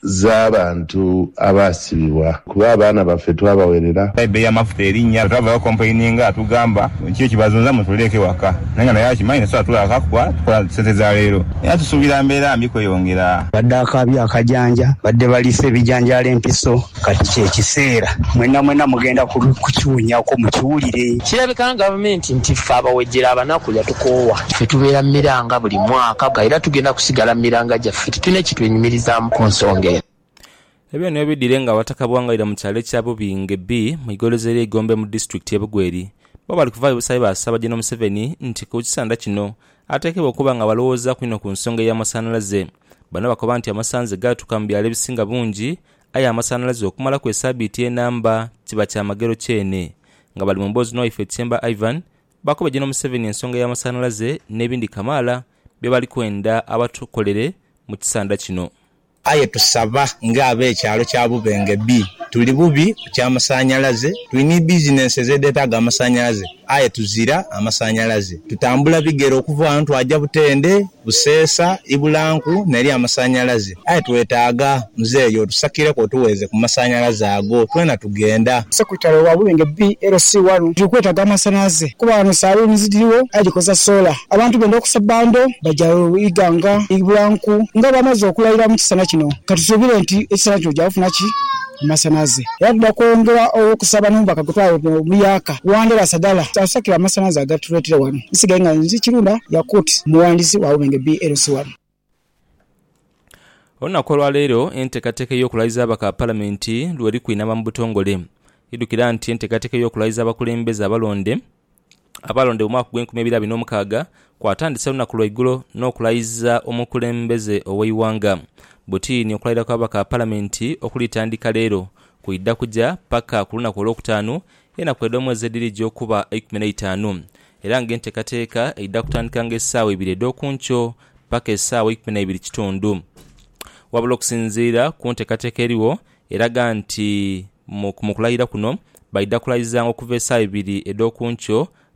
z'abantu abaasibibwa, kuba abaana baffe twabawerera. Aye ebbeeyi y'amafuta erinnya. Bwe twavaayo okompulaininga atugamba kiki ekibazunza mutuleeke ewaka naye nga naye akimanyi tasobola tulaaka kuba tukola sente za leero era tusuubira mbeera mbi kweyongera. Mbadde akaabye akajanja, mbadde baliisa ebijanjaalo empiso, kati kye kiseera mwenamwena mugenda kukiwunyako mukiwulire. Kirabika gavumenti nti ffe abawejjere abanaku yatukoowa. Ffe tubeera mu miranga buli mwaka era tugenda kusigala mu miranga gyaffe. Tulina kye twenyumirizaamu ku nsonga eno. Ebyo niyo bidhire nga Abataka Bwangaira mu kyalo ekya Bubinge B mu igolozi erye Igombe mu disitulikiti ye Bugweri bbo bali kuvaayo busabi baasaba General Museveni nti ku kisanda kino ateekebwe okuba nga balowoozaaku inho ku nsonga eya masanhalaze bano bakoba nti amasanhalaze gaatuuka mu byalo ebisinga bungi aye amasanhalaze okumalaku esabiiti enamba kiba kyamagero kyene nga bali mu mboozi n'owaife Chemba Ivan baakubye General Museveni ensonga ya masanhalaze n'ebindi kamaala bye bali kwenda abatukolere mu kisandha kino. Aye tusaba nga ab'ekyalo kya Bubenge B, tuli bubi ku kya masanhalaze, tuli ni bizinensi ez'edheetaaga amasanhalaze aye tuzira amasanhalaze. Tutambula bigere okuva ghano twaja Butende, Buseesa, Ibulanku n'eri amasanhalaze. Aye twetaaga muzeeyi otusakireku otuweeze ku masanhalaze ago. Twena tugenda. Secretary wa Buwenge BLC wano tuli kwetaaga amasanhalaze kuba wano saloons dhiriwo aye dhikoza solar. Abantu benda okusa bundle baja Iganga, Bulanku nga bamaze okulayira mu kisana kino. Katusuubire nti ekisana kino gyakufuna ki? Amasanhalaze. Era twidha kwongera okusaba n'omubaka gwe twayeta Omuyaaka, Wandera Sagala atusakire amasanhalaze agatuleetere wano. Nsigaire nga nze Kirunda Yakut, omuwandiisi wa Buwenge BLC wano. Olunaku olwaleero entekateka ey'okulaiza ababaka ba palamenti lweri kwinama mu butongole. Idhukira nti entekateka ey'okulaiza abakulembeze abalonde abalonde mu mwaka ogw'enkumi ibiri abiri n'omukaaga kwatandise olunaku lwaigulo n'okulaiza omukulembeze ow'eighanga Butini okulaira kw'ababaka ba palamenti okulitandika leero kwidha kuja paka ku lunaku olwokutaanu Enaku edh'omwezi edhirija okuba eikumi n'eitaanu, era ng'enteekateeka eidha kutandikanga esaawa ibiri edh'oku nkyo paka esaawa eikumi n'eibiri kitundu. Wabula okusinziira ku nteekateeka erigho eraga nti mu kulaira kuno baidha kulaizanga okuva esaawa ibiri edh'oku nkyo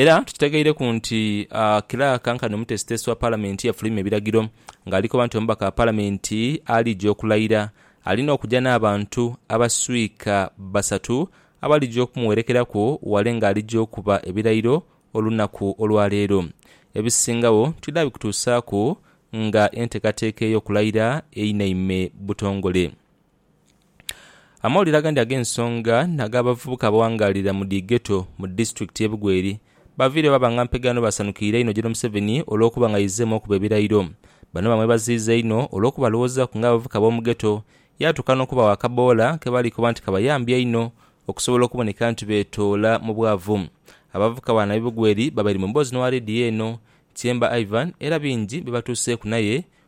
Era tukitegeireku nti kilaaka nkanhi omutesitesi wa palamenti yafulumya ebiragiro nga ali koba nti omubaka wa palamenti alidja okulaira alina okuja n'abantu abaswika basatu abalidja okumuwerekeraku wale nga alidja okuba ebirairo olunaku olwa leero. Ebisingagho twidha bikutuusaaku nga entekateka ey'okulaira einaime butongole. Amawulire agandi ag'ensonga n'ag'abavubuka abawangaalira mu dhi Ghetto mu disitulikiti y'e Bugweri baviireyo baba nga mpegaano baasanukiire inho Gen Museveni olw'okuba nga aizemu okuba ebirayiro. Bano bamwebaziiza inho olw'okuba alowoozaaku ng'abavubuka b'omu Ghetto yaatuuka n'okubawa akaboola ke bali koba nti kabayambye einho okusobola okuboneka nti beetoola mu bwavu. Abavubuka bano ab'e Bugweri babaire mu mboozi n'owa leediyo eno, Tyemba Ivan era bingi bye batuuseeku naye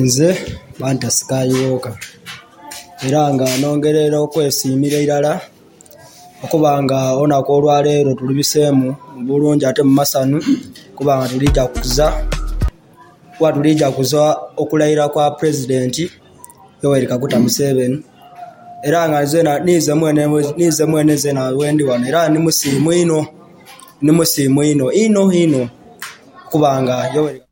Nze Banta Skywalker era nga nongerera okwesimira irala okuba nga olunaku olwaleero tulubisemu bulungi ate mu masanu kuba nga tulija kukuza kuba tulija kukuza okulayira kwa president Yoweri Kaguta Museveni era nga nzena ninze mwene ninze mwene nzena wendi wano era ndi musimu inho ndi musimu inho inho inho okuba nga Yoweri